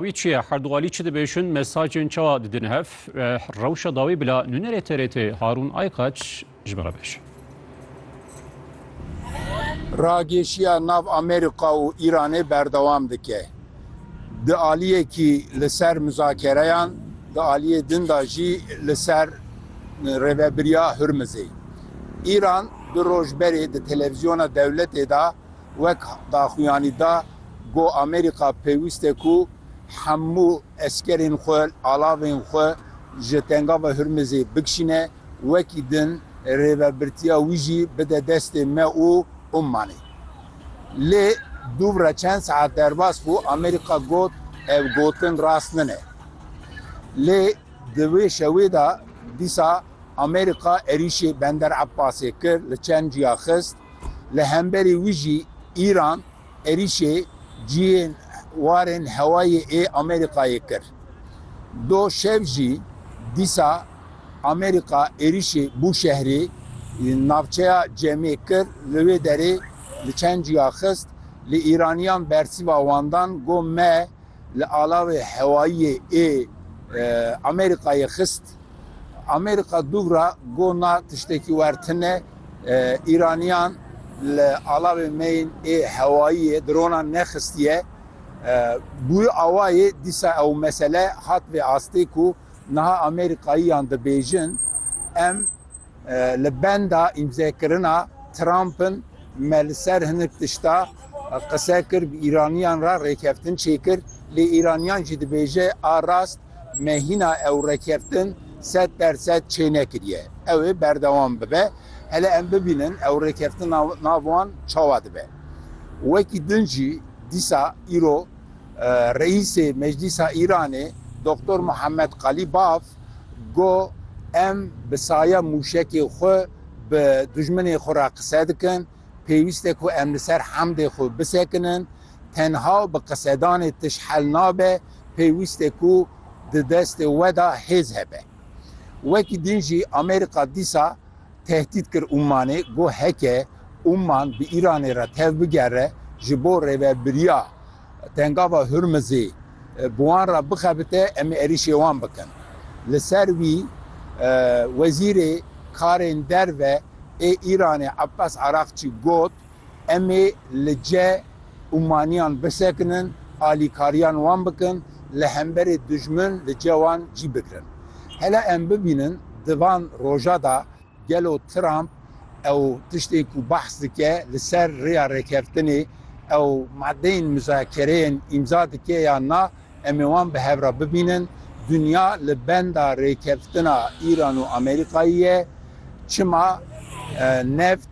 Wî çi ye? Her du alî çi dibêjin, mesajên çawa didin hev? Rewşa dawî bila nûnerê TRT'ê Harûn Aykaç ji me re bêje. Ragêşiya nav Amerîka û Îranê berdewam dike. Di aliyekî li ser muzakereyan, di aliyê din de jî li ser Rêvebiriya Hurmizê. Îran du roj berê di televîzyona dewletê de Wek daxuyanî da got Amerîka pêwîst e ku hemû eskerên xwe, alavên xwe ji Tengava Hurmizê bikişîne, wekî din rêvebirtiya wî jî bide destê me û Ummanê. Lê dûvre çend saet derbas bû Amerîka got ev gotin rast nine. Lê di wê şewê de dîsa Amerîka êrîşê Bender Ebbasê kir, li çend ciya xist. Li hemberî wî jî Îran êrîşê cihên warên hewayê ê Amerîkayê kir. Do şev jî dîsa Amerîka êrîşê Bûşehrî, navçeya Cemê kir, li wê derê li çend cuya xist, lê Îraniyan bersiva wan dan got me li alawê hewayiyê ê Amerîkayê xist. Amerîka dûvra got na tiştekî wer tine, Îranîyan li alawên me yên ê hewayîyê dronan nexistîye. Bûye awayê dîsa ew mesele hat vê astê ku niha Amerîkayîyan dibêjin em li benda îmzekirina Trump in me li ser hinek tişta qise kir bi Îranîyan re rêkeftin çêkir lê Îranîyan jî dibêje a rast Me hîna ew rêkeftin sed der sed çênekiriye. Ew ê berdewam bibe. Hele em bibînin ew rêkeftina nav wan çawa dibe. Wekî din jî dîsa îro Reîsê Meclîsa Îranê Doktor Muhammed Qalîbaf got Em bi saya mûşekê xwe bi dijminê xwe re qise dikin Pêwîst e ku em li ser hemdê xwe bisekinin. Tenha bi qisedanê tişt hel nabe, pêwîst e ku di destê we de hêz hebe. Wekî din jî Amerîka dîsa tehdît kir Ummanê, got heke Umman bi Îranê re tev bigere ji bo rêvebiriya Tengava Hurmizê bi wan re bixebite em ê êrîşê wan bikin. Li ser wî Wezîrê Karên Derve, ê Îranê Abbas Araqçî got, Em ê li ce û maniyan bisekinin, alîkariyan wan bikin, li hemberê dijmin li ce wan cî bigirin. Hele em bibînin di van roja da gelo Trump ew tiştên ku behs dike li ser rêya rêkeftinê ew madeyên mizakereyên îmza dike yan na, Em ê wan bi hev re bibînin. Dinya li benda rêkeftina Îran û Amerîkayê ye. Çima neft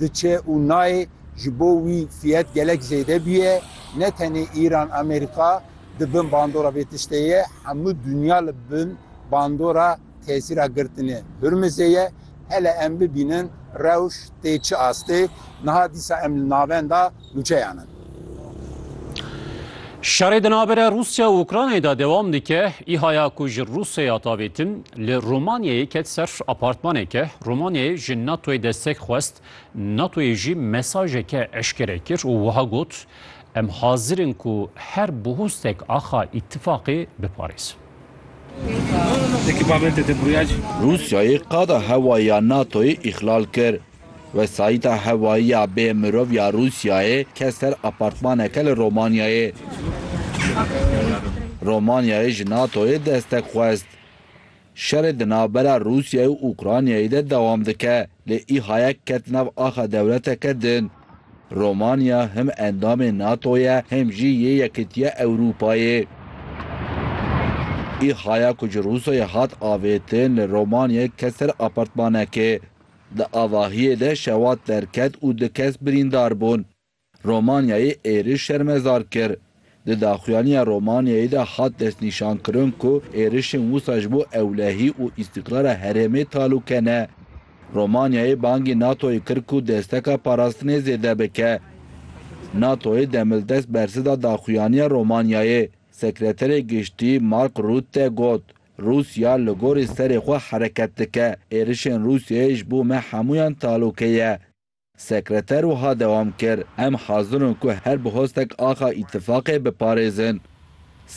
diçe û nayê ji bo wî fiyet gelek zêde bûye. Ne tenê Îran, Amerîka di bin bandora vê tiştê ye. Hemû dinya li bin bandora. Tesîra girtinê Hurmizê ye, hele em bibînin rewş tê çi astê, niha dîsa em li navenda nûçeyan in. Şerê di navbera Rûsya û Ukraynayê de dewam dike. Îhaya ku ji Rûsyaya davêtin li Romanyayê ket ser apartmaneke. Romanyayê ji NATOyê destek xwest, NATOyê jî mesajeke eşkere kir û wiha got, Em hazir in ku her bihustek axa îtifaqê biparêzin. Rûsyayê qada hewayî ya NATO'yê îxlal kir. Wesayîta hewayî ya bêmirov ya Rûsyayê ket ser apartmaneke li Romanyayê. Romanyayê ji NATO'yê destek xwest. Şerê di navbera Rûsyayê û Ukraynayê de dewam dike, lê Ihayek ket nav axa dewleteke din. Romanya him endamê NATO ye him jî yê Yekîtiya Ewrûpayê. Îhaya ku ji Rûsyayê hat avêtin li Romanyayê ket ser apartmanekê. Di avahiyê de şewat derket û du kes birîndar bûn. Romanyayê êrîş şermezar kir. Di daxuyaniya Romaniyeyê de hat destnîşankirin ku êrişên wisa ji bo ewlehî û îstîqrara herêmê talûke ne. Romaniyeyê bangê NATO'yê kir ku desteka parastinê zêde bike. NATO'yê demildest bersi da daxuyaniya Romaniyeyê. Sekreterê Giştî Mark Rutte got, Rûsya li gorî serê xwe hereket dike. Êrişên Rûsyayê ji bo me hemûyan talûke ye. Sekreter wiha dewam kir, Em hazir in ku her bi hostek axa Îtîfaqê biparêzin.